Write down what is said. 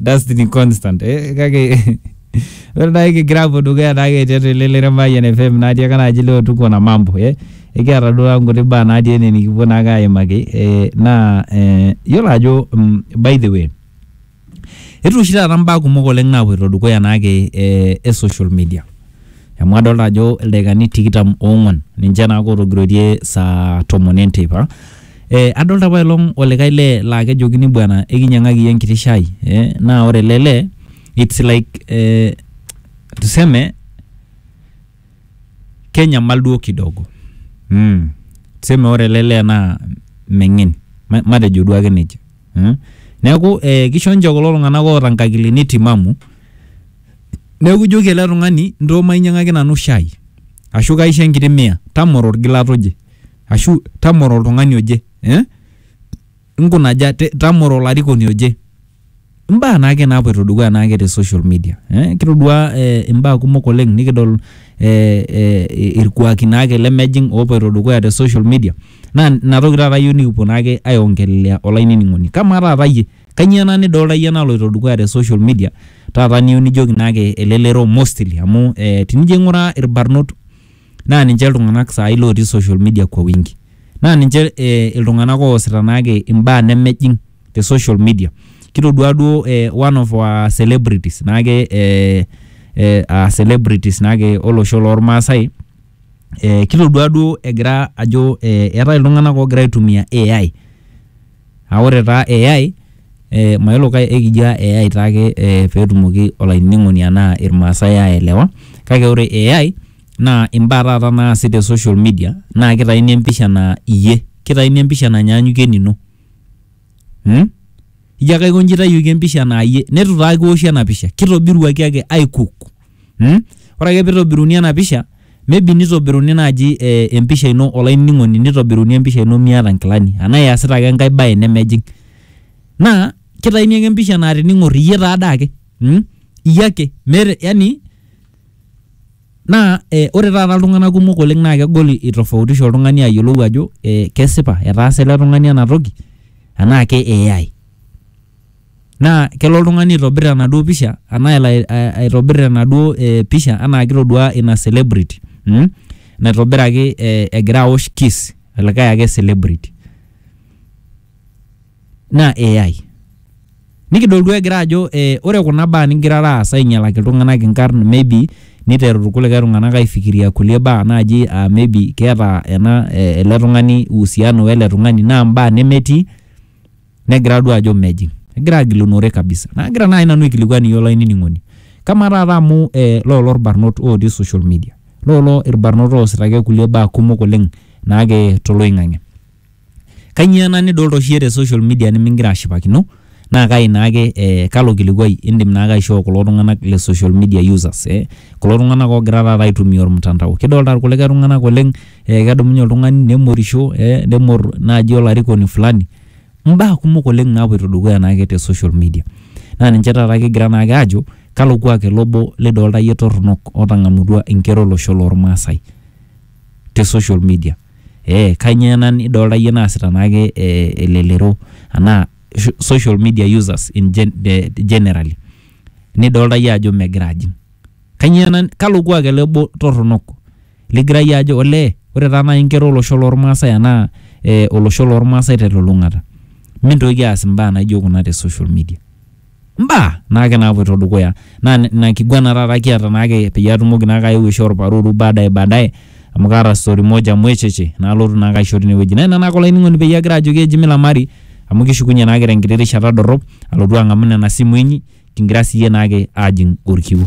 Dustin Constant eh, kake ore naake kigira apuo dukuya naake tiatua ele Leremayian FM natii ake naaji leo tuko na mambo eh. Ekiata duo taata nkuti baa natii ene nikipuo naake aimaki eh, naa eh, yiolo ajo mm, by the way etu oshi taata mbaa kumok oleng naapuoito dukuya naake eh, e social media amu adolta ajo ildaikani tikitam oong'uan ninche naake ootogiroitie saa tomon e nteipa. Ee adolta apa ailong' olikai lee laa kejokini bwana ekinyang'aki iyie enkiti shai ee naa ore ele lee it's like ee tuseme kenyamal duo kidogo mm tuseme ore ele lee naa meng'en ma matejo duo ake neija mm. Neeku ee kisho nche kulo tung'anak oota nkakilini timamu. Neaku ijoki ele tung'ani ntoo mainyiang'aki nanu shai ashu kaisho enkiti mia tamoro olgilata oje ashu tamoro oltung'ani oje eh nkunaja tamoro olarikoni oje imbaa naake napuoito dukuya naake te social media eh kitoduaa eh imbaa kumok oleng nikidol eh eh ilkuaki naake lemejing opuoito dukuya te social media naa inatoki taata iyiu nikipuo naake ae ongelelea olainining'oni kamaa taata iyie. Kanyio ena nidolta iyie naloito dukuya te social media taata niyieu nijoki naake elelero mostly amu eh tenijo aing'uraa irbarnot naa ninche iltung'anak saai lotii social media kwa wingi naa ninche eh iltung'anak oosita naake imbaa nemejing te social media kitodua duo eh one of our celebrities naake eh uh celebrities naake olosho lormaasae eh kitodua duo egira ajo eh eetae iltung'anak ogira aitumia AI Aa ore taa AI, mayiolo kai ekijo AI taake pee etumoki olainining'oni anaa ilmaasai aelewa, kake ore AI naa imbaa taata naasi te social media naa keitaini empisha naa iyie, keitaini empisha nanyaanyukie enino. Ijo ake aiko inji eitayioki empisha naa iyie neitu taa kiwoshi ena pisha, keitobiruaki ake aikuk. mm? ore ake peitobiruni ena pisha maybe nitobiruni naaji eh, empisha ino olainining'oni nitobiruni empisha ino miata nkilani anaa iasita ake enkae baye nemejing naa kitaini ake empisha naa tining'or iyie taade ake mm? iyie ake meeta yani naa eh, ore taata iltung'anak kumok oleng naa kegol itofautisha oltung'ani ayiolou ajo eh, kesipa etaasa ele tung'ani ena toki anaa ke AI Naa kelo oltung'ani aitobir enaduo pisha anaa elo aitobir enaduo pisha anaa kitoduaa ina celebrity mmh naitobiraki egira aosh kiss olikae ake celebrity naa AI. Nikidol duo egira ajo ore kuna baa nigirara aas ainyalaki iltung'anak inkarn maybe niteru irkulikae tung'anak aifikiria kulie baa naji aa maybe keeta ena ele tung'ani uhusiano wele tung'ani naa imbaa nemetii. negira adua ajo mejing egira agilunore kabisa nagira naaji nanu aikilikuan iyie olainining'oni kamaa taata amu eh, lolo irbarnot otii social media lolo irbarnot oosita ake kulie baa kumok oleng naake toloing'ang'e kanyio ena nidolta oshi iyie te social media nimingira ashipakino naa kai naake eh, kalo kilikuai indim naake aishoo kulo tung'anak le social media users eh, kulo tung'anak ogira taata aitumia ormtandao kidolta irkulikae tung'anak oleng eh, kedumunye oltung'ani nemorisho eh, nemorr naaji olarikoni fulani. Imbaa kumok oleng naapoito dukuya naake te social media. Naa ninche taata kigira naake aajo kalo kuak ele obo lidolita iyie torronok otang'amutua inkera olosho lormaasai te social media. Ee kanyoo ena nidolita iyie naasita naake elelero anaa social media users in generally nidolita iyie ajo megira ajing. Kanyoo ena, kalo kuak ele obo torronok ligira iyie ajo olee ore taa nai inkera olosho lormaasai anaa eh olosho lormaasai telulung'ata mintoki aas imbaa naijo kuna te social media. Imbaa naake naapuoito dukuya naa ina kiguana taata kiata naake peyie atumoki naake aeu aishoo olparuuru baadaye baadaye amu kaata story moja mwecheche naalotu naake aisho tine wueji. Naa ina naake olainining'oni peyie agira ajoki eji milamari amu kishukunye naake tenkiti rishata dorrop alotu ang'amu nena simui inyi kingira siyie naake aajing' olkiu.